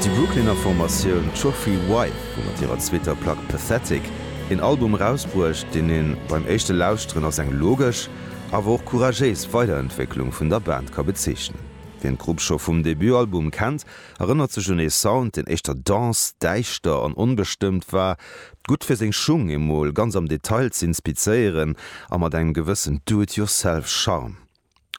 Déi Brooklyner Formatioun Trophy Wife hu mat hirer zweeter Plack Pathetic een Album erausbruecht, deen een beim éischte Lauschteren als eng logesch, awer och couragéis Weiderentwécklung vun der Band ka bezeechnen. Wien d'Grupp scho vum Debutalbum kennt, erënnert sech un ee Sound, deen éischter dens, däischter an onbestëmmt war, gutt fir seng Schung emol ganz am Detail z'inspizéieren a mat engem gewëssen Do-it-yourself-Charme.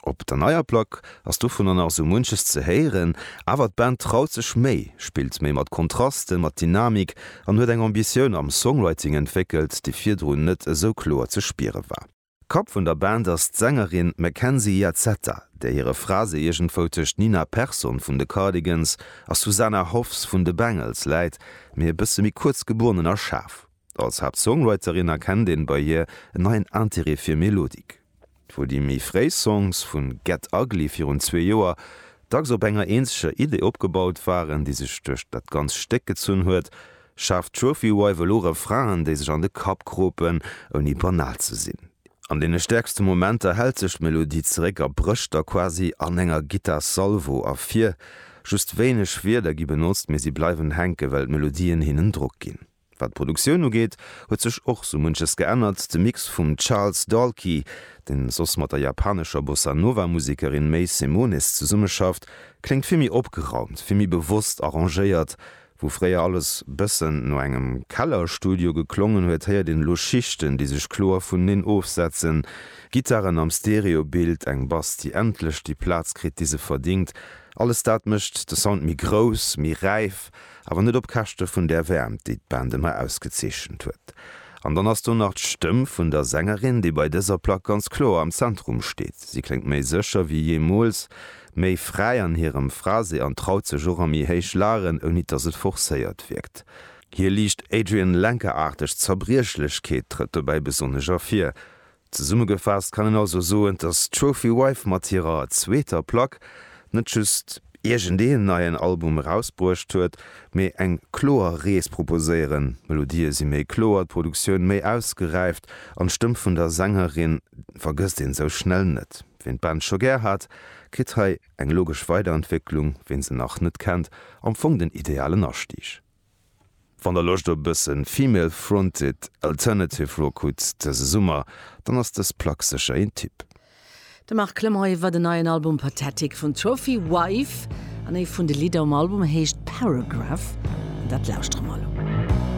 Op der neier Plack ass dovunner nach esou munches ze héieren, awer d'Band traut sech méi, spillt méi mat Kontrasten, mat Dynamik an huet eng Ambitioun am Songwriting entwéckelt, déi virdrun net esou kloer ze spiere war. Kapp vun der Band ass d'Sängerin Mackenzie Iazzetta, där hire Phrase iergendwou tëscht Nina Persson vun de Cardigans a Susanna Hoffs vun de Bangles läit, mee e bësse méi kuerz, gebonnen a schaarf. Als Haaptsongwriterin erkennt een bei hir en neien Interêt fir Melodik. Wou déi méi fréi Songs vu Get Ugly virun zwee Joer dacks op enger eenzeger Idee opgebaut waren, déi sech duerch dat ganzt Stéck gezunn huet, schaaft Trophy Wife elo Refrainen, déi sech an de Kapp kropen, ouni banal ze sinn. An deene stäerkste Momenter hält sech d'Melodie zeréck a brécht da quasi an enger Gittar-Salvo ervir. Just wéineg Wierder gi benotzt, mee si bleiwen hänken, well d'Melodien hinnen Drock ginn. Wat d'Produktioun ugeet, huet sech och sou munches geännert. De Mix vum Charles Dalkey, deen soss mat der japanescher Bossa Nova Musekerin May Simonis zesummeschafft, kléngt vill méi opgeraumt, vill méi bewosst arrangéiert. Wou fréier alles bëssen no engem Kellerstudio geklongen huet, héiert een elo Schichten, déi sech kloer vuneneen ofsetzen, Gittaren am Stereobild, eng Bass, déi endlech déi Plaz kritt, déi se verdingt. Alles dat mécht de Sound méi grouss, méi räif. Awer net op Käschte vun där Wäermt, déi d'Band ëmmer ausgezeechent huet. An dann ass do nach d'Stëmm vun der Sängerin, déi bei dëser Plack ganz kloer am Zentrum steet. Si kléngt méi sécher wéi jeemools, méi fräi an hirem Phrasé an traut sech och a méi héich Lagen, ouni dass et forcéiert wierkt. Hir liicht Adrian Lenker-aarteg Zerbriechlechkeet trëtt dobäi besonnesch ervir. Zesummegefaasst kann een also soen, dass d'Trophy Wife mat hirer zweeter Plack net just iergendeen neien Album erausbruecht huet, mee eng kloer Rees proposéieren. D'Melodië si méi kloer, d'Produktioun méi ausgeräift an d'Stëmm vun der Sängerin vergësst een esou schnell net. Ween d'Band scho gär hat, kritt hei eng logesch Weiderentwécklung, ween se nach net kennt, am Fong den idealen Astieg. Wann der Loscht op e bëssen Female Fronted Alternative Rock hutt dëse Summer, dann ass dës Plack sécher een Tipp. De Marc Clement iwwer den neien Album Pathetic vun Trophy Wife an ee vun de Lidder um Album heescht Paragraph an dat lauschtere mer elo.